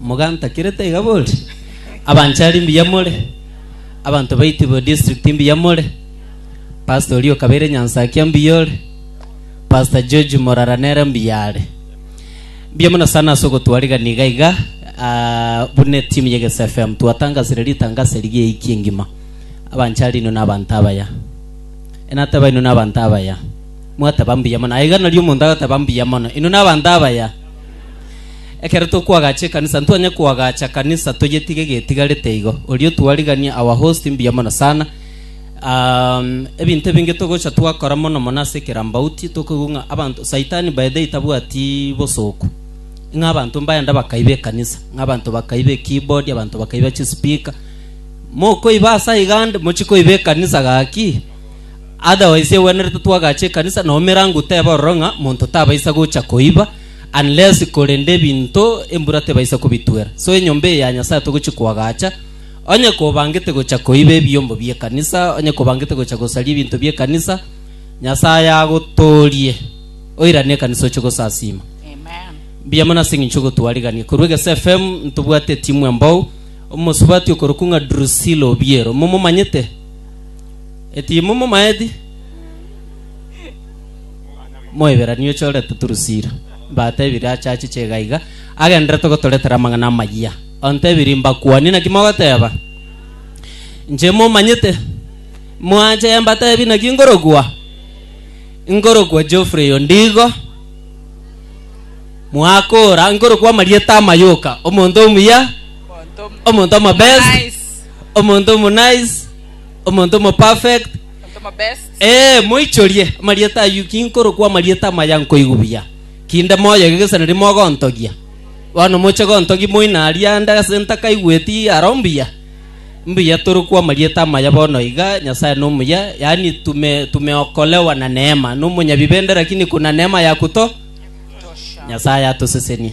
Mogantakirete iga bori? Abanchari mbuya more? Abanto ba Itibo District mbuya more? Pastor oria o kabere Nyansakia mbuya ore? Pastor George Morara nere mbuya are? Mbuya mono sana ase ogotwarigani iga iga ah, buna etimu ya Egesa FM twatangasire ritangaso rigiya ewiki engima. Abanchari inwe nabanto abaya. Enateba inwe nabanto abaya. Mwateba mbuya mono. Aiga nari omonto agateba mbuya mono. Inwe nabanto abaya. Ekero tokoagacha ekanisa ntwanye koagacha kanisa toyetige getigarete igo. Oria otwarigania our host mbuya mono sana. Um, ebinto ebinge togocha twakora mono mono ase ekerambauti tokoigwa ng'a abanto saitani by the way tabwati bosooku. Ng'a abanto mbaya nda bakaiba ekanisa. Ng'a abanto bakaiba ekeyboard, abanto bakaiba chispeaker. Mokoiba ase aiga ande mochie koiba ekanisa gaki. Otherwise egwenerete twagache ekanisa na emerango teba ororo ng'a monto tabaisa gocha koiba unless korende ebinto embura tebaisa kobitwera. So enyomba eye ya Nyasaye togochi koagacha onye kobangete gocha koiba ebiombo bie kanisa onye kobangete gocha gosaria ebinto bie kanisa Nyasaye agotorie oirane ekanisa oche gosasima. Mbuya mono ase eng'encho ogotwarigania. Korwa Egese FM ntobwate etimu embou. Omosubati okorokwa ng'a Drusilla Obiero. Momomanyete? Etimu momaeti Moebrania ochoretwe Turusila, mbatebirie achache chega iga, agenderete gotoretera amang'ana amayia. Ontebirie mbakuanie, naki mogoteba? Inche momanyete? Mwanche mbatebie naki ngorokwa? Ngorokwa Geoffrey Ondigo, mwakora, nkorokwa amarieta amayoka, omonto omuya, omonto omobest, omonto omonais, omonto omoperfect, omonto omobest. Ee, moichorie amarieta ayio, tinkorokwa amarieta amaya nkoigwa buya. Kinde moyoge gese nari mogontogia. Bono moche gontogia moino aria ande ase ntakaigweti aro mbuya. Mbuya torokwa amarieta amaya bono iga, Nyasae nomuya, yaani tume tumeokolewa na neema. Nomonyabibende lakini kuna neema ya kuto Tosha. Nyasae atosesenie.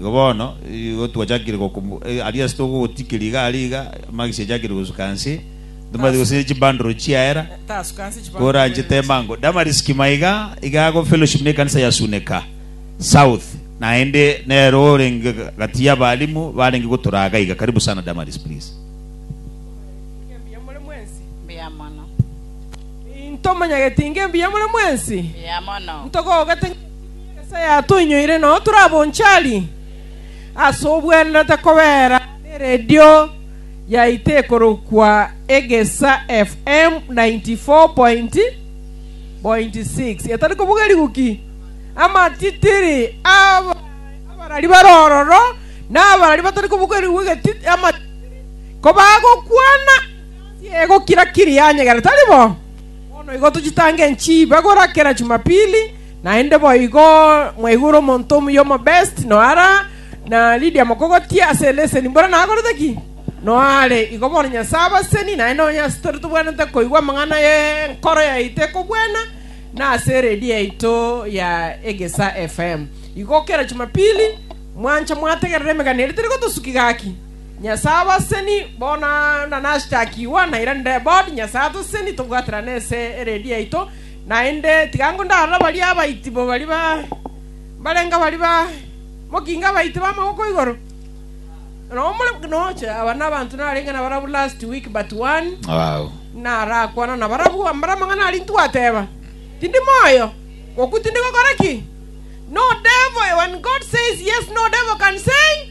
Igo bono, igo twachakire gokumbu, e, aria ase togotikeria iga aria iga, magisi echakire gosuka nse, ntomanyete gose ne chibundle chiaera, Tasuka nse chibando koranchete chiaera. emango. Damaris kima iga, iga ago fellowship ne ekanisa ya Suneka South, naende nero orenge ga- gati y'abalimu barenge gotoraga iga. Karibu sana Damaris, please. Inge mbuya more mwensi. Mbuya mono. Intomanyagete inge mbuya more mwensi. Mbuya mono. Ntogogete Nyasae atoinyoire nao torabonchari aase obwenerete kobera neredio yaito ekorokwa Egesa FM 94.6 etari kobogerigwa ki, amatitiri abarari bare ororo na abarari batari kobogerigwa amatitiri kobagokwana ense egokira-kiri yanyegerete. Tari bo? Bono igo tochitange chibe gora kera Jumapili. Naende boigo mwaigure omonto omuya omobest noara, na Lidia mokogotie ase eleseni mbore nagorete ki? Noare igo bono Nyasae abaseni, naende onye ase tore tobwenerete koigwa amang'ana y'enkoro yaito ekobwena, nase eredio yaito ya Egesa FM, igo kera Jumapili mwancha mwategerera emegani eria teri gotosuki gaki. Nyasae abaseni, bono nanachakigwa, nairanire bod, Nyasae atoseni, tobwaterane ase eredio yaito, Naende tiga ngo ndarore baria abaiti baria mbarenge baria bamokinge abaiti b'amaboko igoro, noche aba nabanto narenge nabarabwo last week but one narakwana nabarabwo amare amang'ana aria ntwateba, Tindi moyo, gokwa tindi gokora ki? No devil, when God says yes, no devil can say.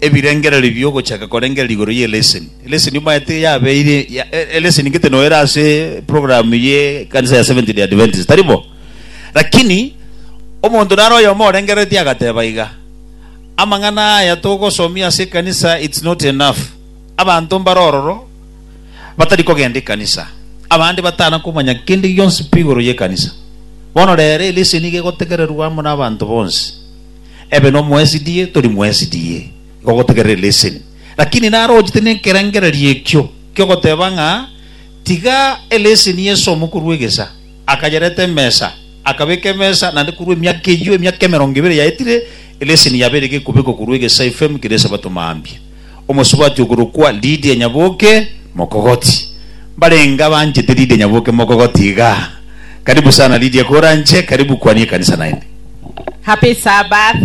ebirengererio bi'ogochaka korengereria igoro ye leseni. Eleseni omaete yabeire ya eleseni ngete noere ase program ye kanisa ya Seventh Day Adventist tari bo. Lakini omonto naro oyomo orengereretie agateba iga, amang'ana aya togosomia ase ekanisa it's not enough. Abanto mbare ororo batari kogenda ekanisa, abande batana komanya kende gionsi pi igoro ye kanisa. Bono rero eleseni iga egotegererwa amo na abanto bonsi. Ebe nomwesidie, tori mwesidie, ngogotegerere leseni. Lakini narochete nekerengererio ekio ki'ogoteba ng'a, Tiga eleseni y'esomo korwa egesa. Akayereta emesa, akabeka emesa, naende korwa emiaka eyio emiaka emerongo ebere yaetire, eleseni yabeire gekobekwa korwa egesa efemu kera esabato mambia. omosubati okorokwa Lidia Nyaboke Mokogoti. Mbarenge abanchete Lidia Nyaboke Mokogoti iga. Karibu sana Lidia koranche, karibu kwanie ekanisa naende. Happy Sabbath.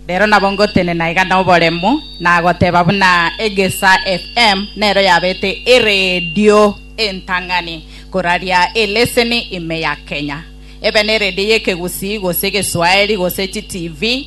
Rero nabo ngotenena iga noboremu, nagoteba buna Egesa FM nero yabete eredio entang'ani koraria eleseni ime ya Kenya. Ebe neredio y'ekegusii gose egeswaeri gose chitivi,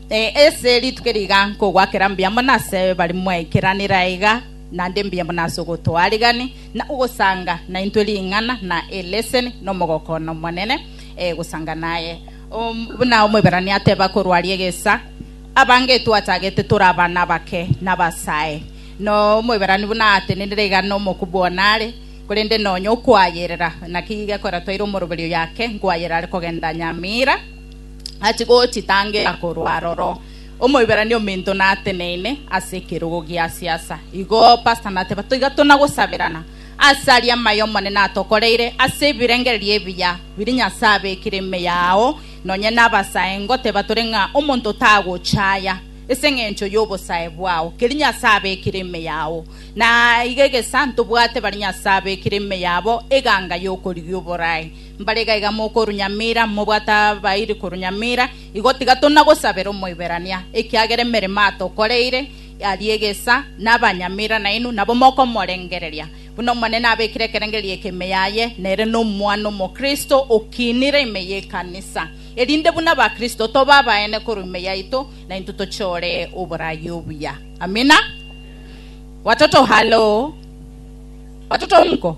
Ase rituko eri iga nkogoakera mbiambo nase bari mwaikeranire aiga nande, mbiambo nase ogotoarigani na ogosanga naintwe ring'ana na eleseni na omogokoono omonene gosanga naye. Buna Omoiberania ateba korwa aria egesa, Abange twachagete tore abana abake nabasae. Na Omoiberania buna atenenire iga nomokubi oo nare, korende nonya okoayerera, naki gekogera twaire omoroberi oyo ake nkoayerera are kogenda nyamira. achie gochitangera korwa aroro. Omoiberania omento nateneine ase ekerogo gia siasa. Igo pastor nateba, toiga tona gosaberana ase aria amaya Omonene atokoreire ase ebirengererio ebiya biria Nyasae abekire ime yao nonye nabasae ngoteba tore ng'a omonto tagochaya ese ng'encho yobosae bwao keri Nyasae abekire ime yao na iga egesanto bwate bari Nyasae abekire ime yabo eganga yokorigia oborae Mbare iga iga mokorunyamira, mobwate abairi korunyamira, igo tiga tonagosabera Omoiberania, ekiagera emeremo atokoreire aria egesa, nabanyamira nainwe, nabo mokomorengereria. Buna Omonene abekire ekerengererio eke ime yaye, nere nomwana Omokristo okinire ime y'ekanisa, erinde buna abakristo tobe abaene korwa ime yaito, naintwe tochore oboraai obuya. Amina. Watoto halo. Watoto mko.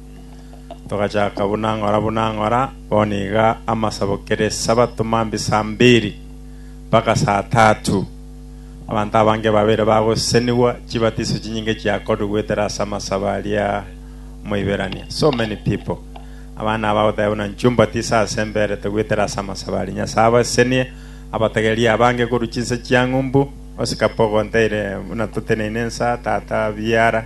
Togachaka buna ng'ora buna ng'ora, bono iga amasabo kera Esabato mambia saa mbiri mpaka saa tatu. Abanto abange babeire bagosesenigwa, chibatiso chinyinge chiakorire goetera ase amasabo aria Omoiberania. So many people. Abana aba bagoteba buna inche ombatisa ase mberete goetera ase amasabo aria. Nyasae abasesenie, abategererie abange korwa chinse chia ng'umbu, osikape ogonteire buna toteneine ensa, tata, biara.